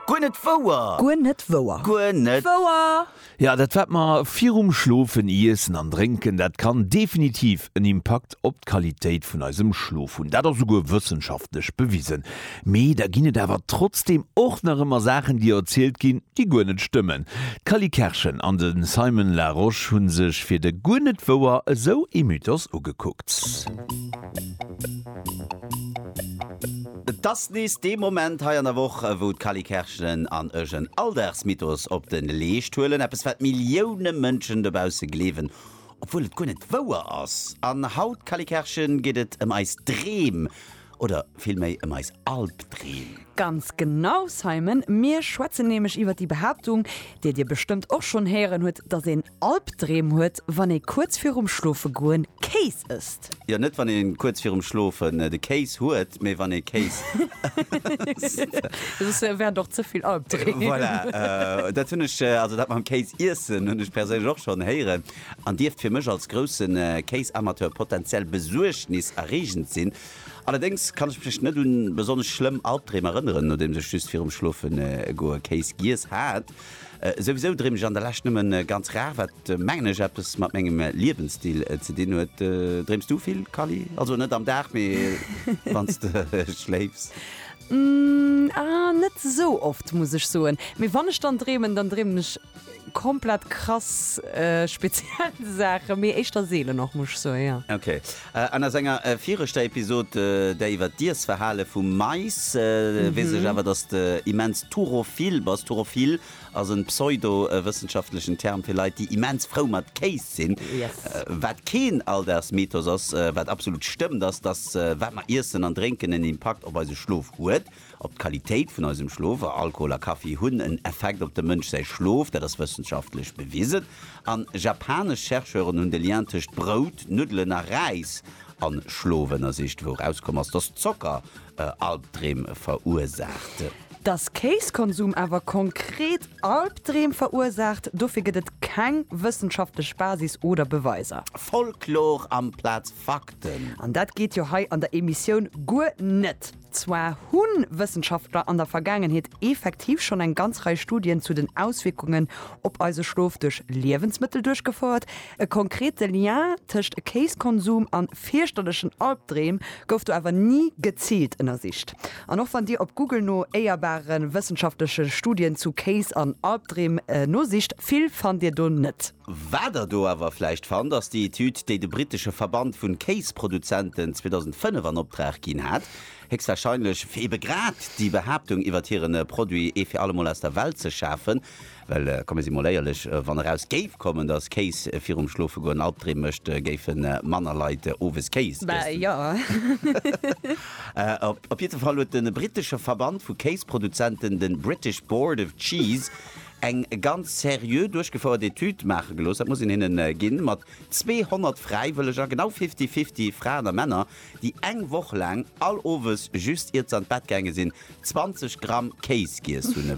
Guer net wouer! Guer net wouer! Guer net wouer! Jo, dat wat mer virum Schlofen iessen an drénken, dat kann definitiv en Impakt op d'Qualitéit vun eisem Schlof hunn. Dat ass souguer wëssenschaftlech bewisen. Mee da ginn et awer trotzdeem och nach ëmmer Saachen, déi erzielt ginn, déi guer net stëmmen. D'Cally Kerschen an de Simon Larosche hu sech fir de Guer net wouer esou ee Mythos ugekuckt. Et ass nees dee Moment hei an der Woch, wou d'Kally Kerschelen an ech en Alldagsmythos op de Leescht huelen, eppes wat Millioune Mënschen dobausse gleewen, obwuel et guer net wouer ass. An haut, Kally Kerschen, geet et ëm eis Dreem, oder vill méi ëm eis Albdreem. Ganz genau, Simon, mir schwätzen nämlech iwwer déi Behaaptung, déi dir bestëmmt och schonn héieren hutt, datt een Albdreem huet wann ee kuerz virum schlofe goen Kéis ësst. Jo net wann een kuerz virum schlofen de Kéis huet mee wann ee Kéis ësst. Soss wären et och ze vill Albdreem. Voilà dat hunn ech also dat mam Kéis iessen hunn ech perséinlech och schonn héieren an dierft fir mech als groussen Kéisamateur potenziell Besuergnis erreegend sinn. Allerdéngs kann ech mech net un besonnesch schlëmm Albdreem erënneren nodeems ech just virum schlofen goe Kéis giess hat. Souwisou dréin mech an der Lescht nëmmen ganz rar, wat mengen ech eppes mat mengem Liewensstil ze dinn huet. Dréims du vill Kally? Also net am Dag, mee wanns de schléifs? Ahh net esou oft muss ech soen, mee wann ech dann dreemen, dann dreemen ech komplett krass speziell Saachen, mee éischter seelen och muss ech soen, jo. Ok. An aus enger viregter Episod, där iwwer d'Iessverhale vum Mais, weess ech awer, dass de immens Turophil bass. Turophil ass en pseudo-wëssenschaftlechen Term fir Leit, déi immens frou mat Kéis sinn. Wat keen Alldagsmythos ass, wat absolut stëmmt, ass, dass wat mer iessen an drénken en Impakt op eise Schlof huet. Op d'Qualitéit vun eisem Schlof, a Alkohol a Kaffi hunn en Effekt op dem Mënsch säi Schlof, dat ass wëssenschaftlech bewisen. An japanesch Chercheuren hunn de Lien tëscht Brout, Nuddelen a Räis an Schlof ënnersicht, wou erauskomm ass, dass Zocker Albdreem verursaacht. Dass Kéiskonsum awer konkret Albdreem verursaacht, dofir gëtt et keng wëssenschaftlech Basis oder Beweiser. Folklor amplaz Fakten! An dat geet jo hei an der Emissioun guer net! Zwar hu Wëssenschaftler an der Vergaangenheet effektiv schonn eng ganz Rei Studien zu den Auswierkungen op eise Schlof duerch Liewensmëttel duerchgefouert. E konkrete Lien tëscht Kéiskonsum a fierchterlechen Albdreem gouf do awer ni geziilt ënnersicht. An och wann Dir op Google no éierbare wëssenschaftleche Studien zu Kéis an Albdreem nosicht, vill fannt Dir do net. Wat der do awer vläicht fannt, ass déi Etüd, déi de brittesche Verband vun Kéisproduzenten 2005 an Opdrag ginn hat, héchstwahrscheinlech fir ebe grad déi Behaaptung iwwert hiren Produit ee fir allemol aus der Welt ze schafen. Well komme si mol éierlech, wann eraus géif kommen, dass Kéis virum Schlofegoen Albdreem mécht, géife manner Leit owes Kéis iessen. Op jiddwer Fall huet de brittesche Verband vu Kéisproduzenten, de British Board of Cheese, eng ganz seriö duerchgefouert Etüd maache gelooss, dat muss een hinnen ginn, mat 200 Fräiwëlleger, genau fifty-fifty Fraen a Männer, déi eng Woch laang all Owes, just iert se an d'Bett gaange sinn, 20 Gramm Kéis giess hunn.